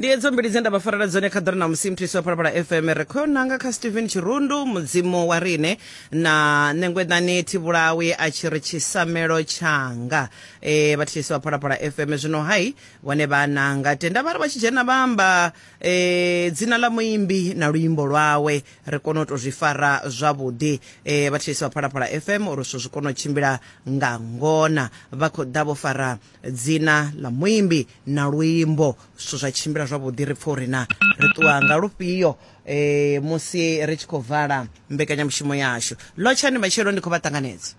ndi edzo mbili dze nda vha farela dzone kha ḓore na musi mthisi wa phalaphala fm ri khou nanga kha stephen tshirundu mudzimu wa rine na ṋengwedani thivhulawi a tshi ri tshisamelo tshanga e, vhathisi wa phalaphala fm zwino hai vhone vha nanga tenda vha ri vha tshi dzhena vha amba e, dzina ḽa muimbi na luimbo lwawe ri kone u tou zwi fara zwavhuḓi e, vhathisi wa phalaphala fm uri zwithu zwi kone u tshimbila nga ngona vha khou ḓa vho fara dzina ḽa muimbi na luimbo zwithu zwa tshimbila zwavhuḓi ri pfha uri na ri ṱuwa nga lufhio eh musi ri tshi khou vala mbekanyamushumo yashu lotshani matshelo ndi khou vha ṱanganedza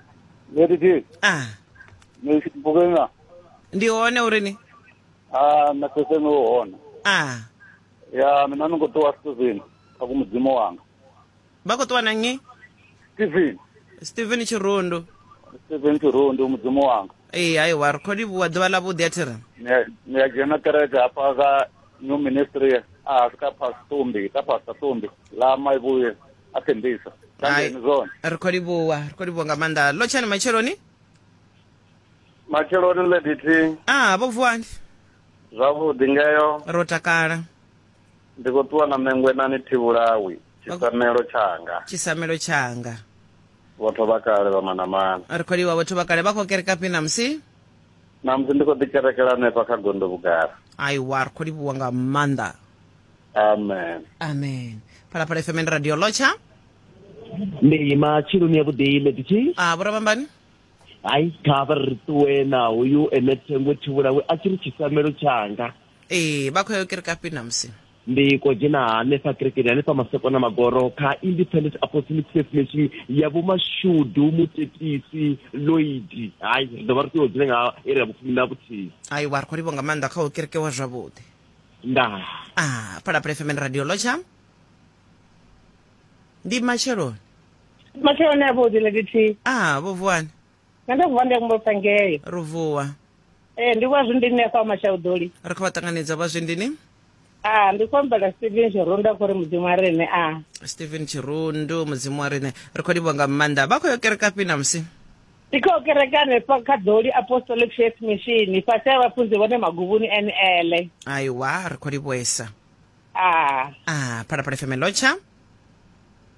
Lady G, ah ni bukenya. ndi hone uri ni Ah, na sese ni hona. ah Ya, mina ni ngo ṱuwa sizini. Kha ku mudzimu wanga. vha khou ṱuwa na nnyi steven steven tshirundu steven tshirundu mudzimu wanga ee hai wa ri khou livhuwa ḓuvha ḽa vhuḓi a thi ri ni a dzhena kereke hafha ka new ministry a ah, ka pastumbi ka pasta tumbi la maivhuye a thembisa kandeni zone ri khou livhuwa ri khou livhuwa nga maanḓa lo tshani matsheloni matsheloni lediti a ah, vho vuwani zwavhuḓi ngeyo ro takala Ndi khou ṱuwa na ṋengwe na ni thivhulawi, tshisamelo tshanga. tshisamelo tshanga Vhotho vha kale vha manamana. ri khou livhuwa vhotho vha kale vha khou kereka fhi namusi Namusi ndi khou ḓi kerekela hanefha kha gondo vhugala. aiwa ri khou livhuwa nga maanḓa Amen. amen phalaphala fm ndi radio lotsha ndi matsheloni ya vhuḓi medici a vho ravhambani hayi kha vha ri ṱuwe na hoyu ene thengwe thivhulawe a tshi ri tshisamelo tshanga Ee, vha khou ya u kerekafhi namusi? Ndi ko dzhena hanefha kerekeni hanefha masokona magoro kha Independent Apostolic Faith Mission ya vho Mashudu Mutetisi Lloyd. Hai, ri ḓo vha ri tshi yo dzhena nga iri ya vhufumi na vhuthihi. Hai, wa ri khou livho nga maanḓa kha u kerekewa zwavhuḓi. Ndaa. Ah, Phalaphala FM and Radio Locha. Ndi matsheloni. Matsheloni a vhuḓi ladithi. Ah, vho vuwani. nṋe ndo vuwa ndi ya kumbulisa ngeyo ro vuwa ee ndi vha zwindini ni afha mashauḓoli ri khou vha ṱanganedza vha zwindini a ndi khou ambela steven tshirundu a khou ri mudzimu a rine a stephen tshirundu mudzimu wa riṋe ri khou livhonga maanḓa vha khou yo kereka fhi namusi ndi khou kerekane fa kha ḓoli apostolic faith mission fhasi a vhafunzi vhone maguvhuni nl aiwa ri khou livhuesa a a phalaphala fm lotsha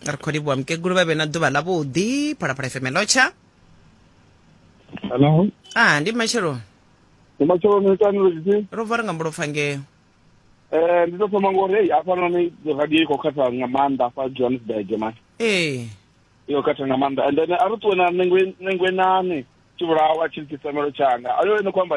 ri khou livhuwa mukegulu vha vhe na ḓuvha ḽavhuḓi phalaphala fm lotsha hello ah ndi matshelo ndi matshelo ni tani lutshitshi ro vuwa ri nga mbulopfa ngeo eh ndi ḓo thoma ngori hei hafhanoni radio i khou khatha nga maanḓa fa johannesburg mani ee i khou khatha nga maanḓa and then a ri ṱuwe na nengwe nengwe nane tshivhulawa tshi likisamelo tshanga ayo ene khou amba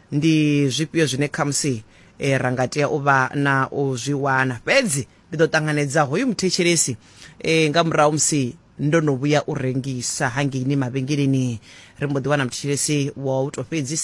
Ndi zwifhio zwine khamusi ra nga tea u vha na u zwi wana? Fhedzi ndi ḓo ṱanganedza hoyu muthetshelesi nga murahu ha musi ndo no vhuya u rengisa hangeini mavhengeleni. Ri mbo ḓi wana muthetshelesi wa u tou fhedzisela.